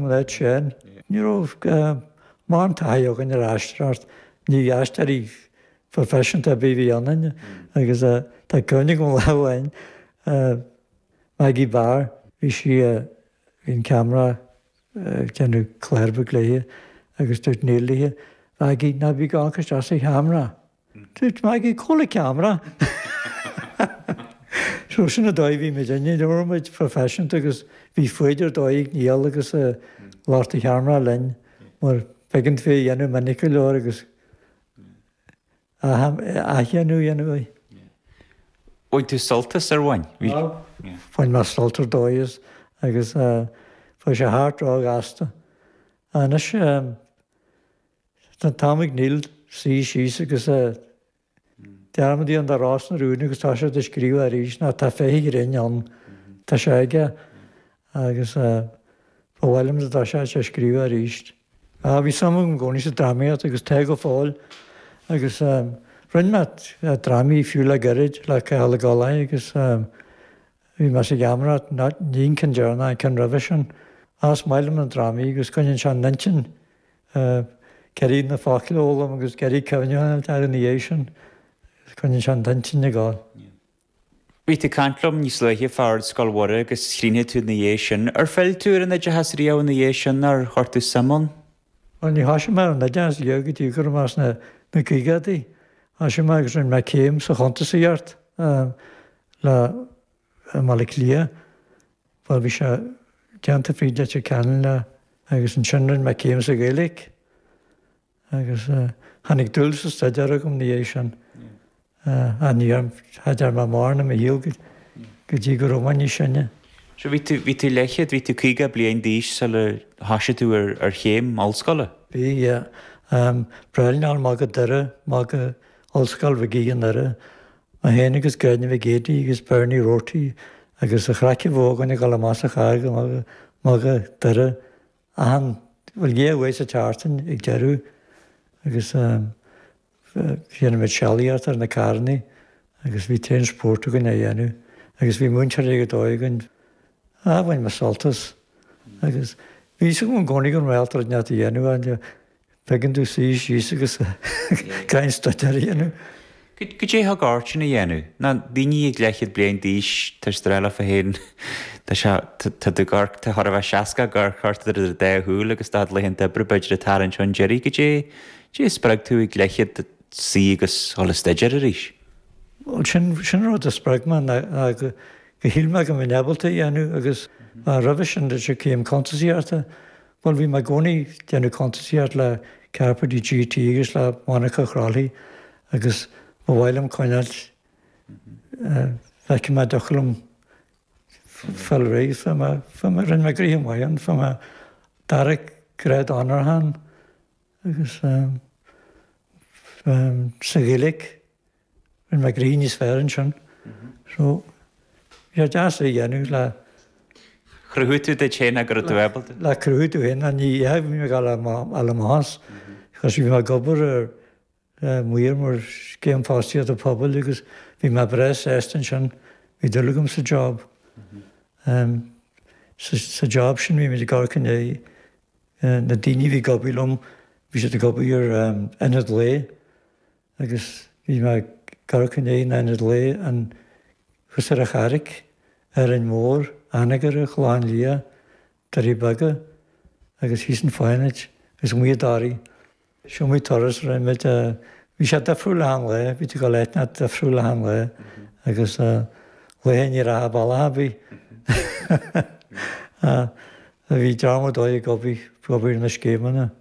leid sin, ní raibh mórán taithí againn ar aisteoireacht, ní aisteoirí proifisiúnta ar bith a bhí ionainn agus tá cuimhne agam lá amháin ar Maggie Barr, bhí sí, bhí an ceamara ag déanamh clár beag léithe agus dúirt Neil léithe, Mhaggie, ná bí ag amharc isteach sa cheamara. Dúirt Maggie cá bhfuil an ceamara! So sin an dóigh a bhí muidinne, ní raibh muid proifisiúnta agus bhí foighid ar dóigh ag Niall agus ag lucht an cheamara linn mar b'éigean daofa é a dhéanamh minic go leor agus athdhéanamh a dhéanamh air. Bhain tú sult as ar bhain? Bhain mé sult ar dóigh as agus bhí sé thart ró ghasta. Anois. Sna Tamaill Ghil, Suí Síos agus Dearmad í an dá rá sna rúin agus tá siad ag scríobh arís mar tá féith an ghrinn ann. Tá sé aige agus ba mhaith liom dá dtéadh sé a scríobh arís. Bhí suim agam i gcónaí sa drámaíocht agus tá go fóill agus rinne mé drámaí fiú le gairid le Cathal Ó Gallchóir agus bhí mé sa gheamaireacht ní an ceann deireanach an ceann roimhe sin. Ach is maith liom na drámaí agus coinníonn sé an intinn ea, ag iarraidh na focla a fhoghlaim agus ag iarraidh cuimhneamh orthu ina dhiaidh sin, agus coinníonn sé an t-intinn ag gabháil. Bhí tú ag caint liom níos luaithe fá Ard Scoil Mhuire agus rinne tú ina dhiaidh sin. Ar phill tú ar an oideachas riamh ina dhiaidh sin nó ar chuir tú suim ann? Bhuel, níor thoisigh mé ar an oideachas riamh go dtí go raibh mé sna na caogadaí. Thoisigh mé agus rinne mé céim sa chuntasaíocht le i mBaile Átha Cliath. bhuel bhí sé déanta fríd Leitir Ceanainn lá agus ansin rinne mé céim sa Ghaeilge agus tháinig dúil sa staidéar agam ina dhiaidh sin. Ach ní dhearn, cha dtearn mé mórán i mo shaol go dtí go raibh mé níos sine. So bhí tú, bhí tú leathchéad, bhí tú caoga bliain d'aois sula thosaigh tú ar, ar chéim ollscoile? Bhí, yeah. Ag traibhleáil amach go Doire, amach go Ollscoil Mhig Aoidh i nDoire mé féin agus Gráinne Mhic Géidigh agus Bernie Rorty agus an chraic a bhíodh againn ag dul amach sa charr amach go Doire, achan bhuel dhá oíche sa tseachtain ag deireadh agus dhéanadh muid sealaíocht ar na carrannaí agus bhí tréan spóirt againn á dhéanamh agus bhí múinteoirí ar dóigh againn ah bhain mé sult as agus bhí fhios agam i gcónaí go raibh mé ábalta rud ineacht a dhéanamh ann, Faigheann tú suí síos agus caint staidéar a dhéanamh. Goidé thug ort sin a dhéanamh? Ná daoine ag leathchéad bliain d'aois tar éis streilleach fé théin, tá sé, tá do gcoirp, tá chóir a bheith seasca ag amharc ort idir do dhá shúil agus do chuid laethanta oibre b'fhéidir ag tarraingt chun deiridh. Goidé a spreag tú ag leathchéad duit suí agus dhul a staidéar arís? Bhuel, sin, sin an rud a spreag mé ná go shíl mé go mbeinn ábalta a dhéanamh agus roimhe sin, de cíom cuntas a dhéartá, Bhuel, bhí mé i gcónaí ag déanamh cuntasaíocht le Cairpéidí GT agus le monarcha Chroithlí agus ba mhaith liom cineál, bhfeicfidh mé an dtiocfadh liom fáil réidh, fuair mé, fuair mé, rinne mé gnoithe maith ann, fuair mé dara grád onóracha ann agus sa Ghaeilge. Rinne mé gnoithe níos fearr ansin. So, bhí sé deas é a dhéanamh le. Chruthaigh tú duit féin go raibh tú ábalta. Le cruthú tú féin, a ní ea, bhí mé ag fháil a mbás coz bhí mé ag obair mar maor ar scéim fostaíochta pobail agus bhí mé breá sásta ansin, bhí dúil agam sa job. Sa job sin bhí muid ag amharc i ndiaidh na daoine a bhí ag obair liom, bhí siad ag obair ar ionad lae. agus bhí mé ag amharc i ndiaidh ionad lae anseo ar an Charraig, Árainn Mhór, Anagaire, Clochán Liath, Doirí Beaga agus thíos i bhFánaid agus amuigh i dToraigh. Is iomaí turas a rinne muid, bhí sé difriúil achan lae, bhí tú ag dul áiteanna difriúla achan lae agus laethe ní raibh tú bealach ar bith. a bhí dráma dóibh ag obair na scéimeanna.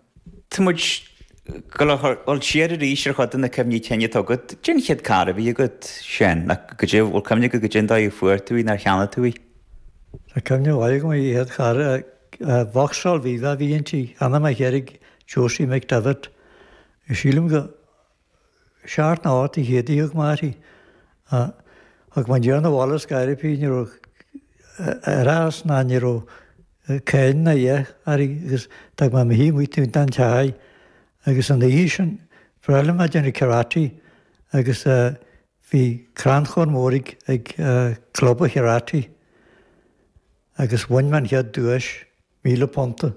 Tá muid ag gabháil siar arís ar chuid de na cuimhní cinn atá agat. Cén chéad carr a bhí agat, Seán? Nó an bhfuil cuimhne agat goidé an dóigh a bhfuair tú í, nó ar cheannaigh tú í? Tá cuimhne mhaith agam ar an chéad charr, Vauxhall Viva a bhí inti, cheannaigh mé an carr ag Josie McDevitt. Sílim go seacht nó hocht de chéadta a d'íoc mé uirthi. Thug mé aniar abhaile as Gairrfhídh. Ní raibh árachas ná ní raibh cáin ná a dhath uirthi agus d'fhág mé í amuigh taobh an tighe agus an oíche sin ba bhreá liom a bheith ag déanamh karate agus bhí crannchur mór ag club an karate agus bhain mé an chéad duais, míle punta.